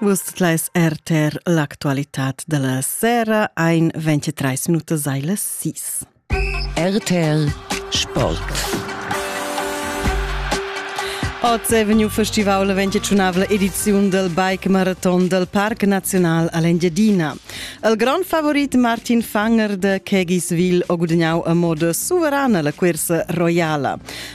Vus leis RTR l'actualitat de la sera ein 23 minutas ei las 6. RTR Sport. Oz è vegniu festival la 25 ediziun del Bike Marathon del Parc Nacional all'Engiadina. Il grand favorit Martin Fanger de Kegisville ha gudagnau a moda suverana la cursa roiala.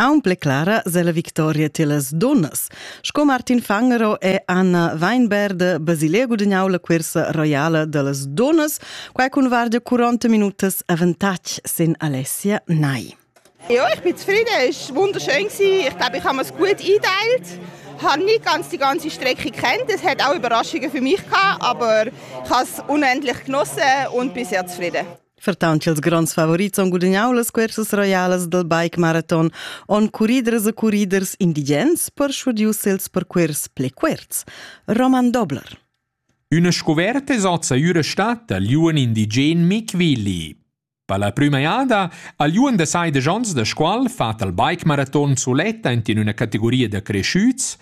Aunc pli clara sella victoria tiellas dunnas, sco Martin Fangero e Anna Weinberg Basilea gudagnau la cursa roiala dallas dunnas, quai cun vardia 40 minutas avantatg sin Alessia Nai. Ja, ich bin zufrieden, es war wunderschön Ich glaube, ich habe es gut eingeteilt. Ich habe nicht ganz die ganze Strecke kennt. Es hat auch Überraschungen für mich gehabt, aber ich habe es unendlich genossen und bin sehr zufrieden. Ferton ch'ils gronds favorits han gudagnau las cursas roialas dal bike maraton, han curriders e curriders indigens perschudiu els percuors pli cuorts. Roman Dobler. Üna scuverta sozza üra stata liuan indigen Mick Willi. Per la prüma jada ha liuan da sai de Jons da Scuol fat al bike maraton suletta in una categoria da cresciuts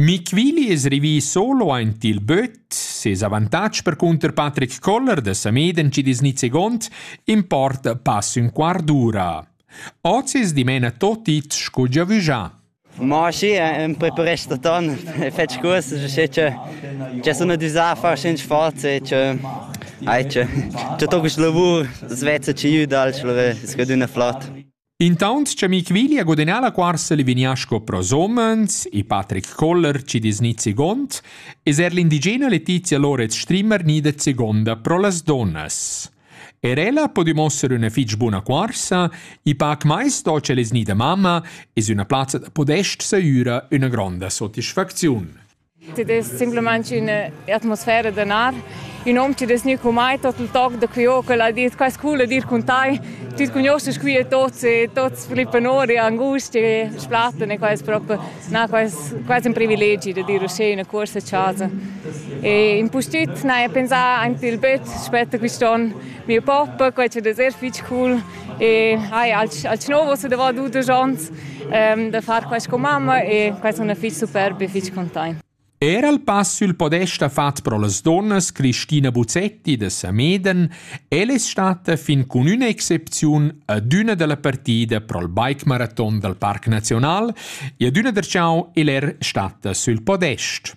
Mick Willi es rivì solo aint il böt. Ses avantatg percunter Patrick Koller da Sameden ci dis nizegond importa pass ün quart d'ura. Oz es dimena tot it scu giavüschà. Ma sì, ün preparest da ton, e fetsch curs, sche che che sun adüsà a far schins forz e che ai che che to quist lavur, das vezza ci jü dal schlore, es scadüna flot. Intaunt cha Michwili ha gudagnà la cuorsa Livignaschko pro Sommerns e Patrick Koller ci disgnit second, es er l'indigena Letizia Loretz Strimmer gnida segonda pro las donnas. Er ella po dimosser üna fich buna cuorsa e pac mai sto ch'el es gnida mamma es üna plazza da podest sahüra üna gronda sotisfacziun. Tit es simplamaing ün'atmosfera da nar. Ün hom chi'd es gnü con mai tot il toc da cuio ch'el ha dit quai scul ed ir cun tai. Tüt cugnuoschast qui e tots e tots flippan our e angustia e splatten e quai es propi na, quai es quasi ün privilegi da dir uschè üna cuorsa a chasa. E impustüt n'haja pensà aint il böt spet quist'on. Mio pop, quai chi'd es eir fich cool. E hai als, als novos da va dudesch ons ehm, da far quest con mamma e quest on fich superb e fich containt. Era il pass sul podesta fat pro las donnas Cristina Buzzetti da Sameden el è stata fin con una excepziun ad una della partida pro il bike marathon dal Parc Nazional e ad una der ciao el er stata sul podest.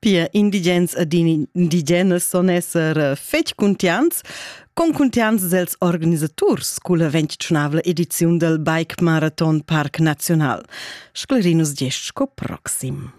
Pia indigens ed indigenas son esser eh, fetg cuntiants, concuntiants dels organisaturs culla ventschunavla ediziun del Bike Marathon Parc Nacional. Sclerinus gest sco proxim.